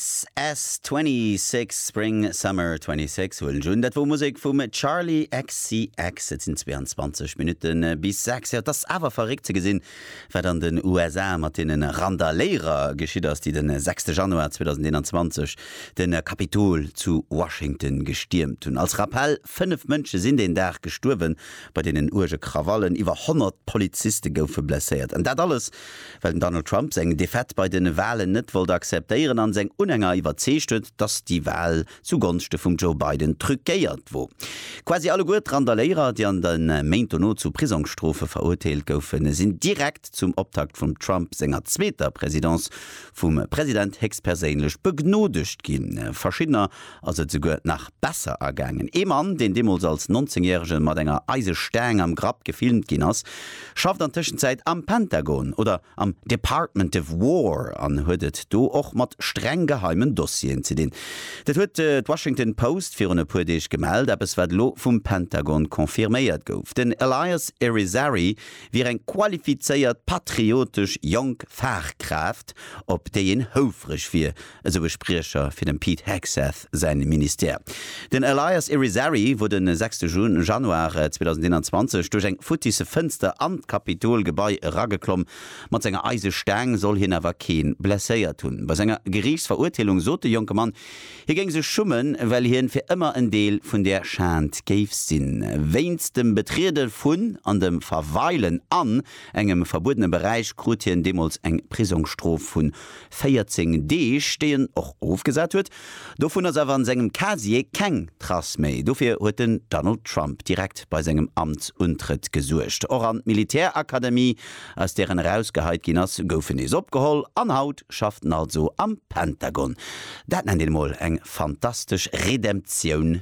SS 26, Spring Summer 26 huelen ech un. Dat wor Musek vum Charli XCX. Et sinn 22 Minutte bis 6. Jo, et ass awer verréckt ze gesinn, wat an den USA mat deene Randaléierer geschitt ass, déi de 6 Januar 2021 de Kapitol zu Washington gestiermt hunn. Als Rappell, 5 Mënsche sinn deen Dag gestuerwen bei deenen uerge Krawallen, iwwer 100 Poliziste goufe blesséiert. An dat alles Well den Donald Trump seng Defaite bei den Walen net wollt akzeptéieren an seng Unhänger iwwerzeegt huet, dass déi Wal zu Gonschte vum Joe Biden truquéiert wor. Quasi alleguer d'Randaléierer, déi an de Méint dono zu Prisongsstrofe verurteelt goufen, sinn direkt zum Optakt vum Trump senger zweeter Présidence vum President héchstperséinlech begnodegt ginn. Verschiddener ass et souguer nach besser ergaangen. Ee Mann, deen deemools als Nonzéngjäregen mat enger Eisestaang am Grapp gefilmt ginn ass, schafft an Tëschenzäit am Pentagon oder am Department of War an huet et do och mat streng geheimen Dossieren ze dinn. Dat huet d'Washington Post virun e puer Deeg gemellt, eppes wat elo vum Pentagon confirméiert gouf. Den Elias Irizarry wier eng qualifizéiert, patriotesch jonk Fachkraaft, op déi een houfreg wier, esou e Spriecher fir dem Pete Hegseth säin Ministère. Den Elias Irizarry wor de 6 Januar 2021 duerch eng futtisse Fënster an d'Kapitol-Gebai erageklomm. Mat senger eise Staang soll hien awer kee blesséiert hunn. Bei senger Geriichtsverurteelung sot de jonke Mann, hie géing sech schummen, well hien fir ëmmer en Deel vun där Schand géif sinn. Wéinst dem Betriede vun an dem Verweilen an engem verbuedene Beräich krut hien deemools eng Prisongsstrof vun 14 Deeg, déi en och ofgesat huet. Dovun ass awer an sengem Casier keng Trace méi. Dofir huet den Donald Trump direkt bei sengem Amtsuntrëtt gesuergt. Och an d'Militärakademie, aus där en erausgeheit ginn ass, gouf en nees opgeholl. An haut schafft en also am Pentagon. Dat nennt een emol eng fantastesch Redemptioun!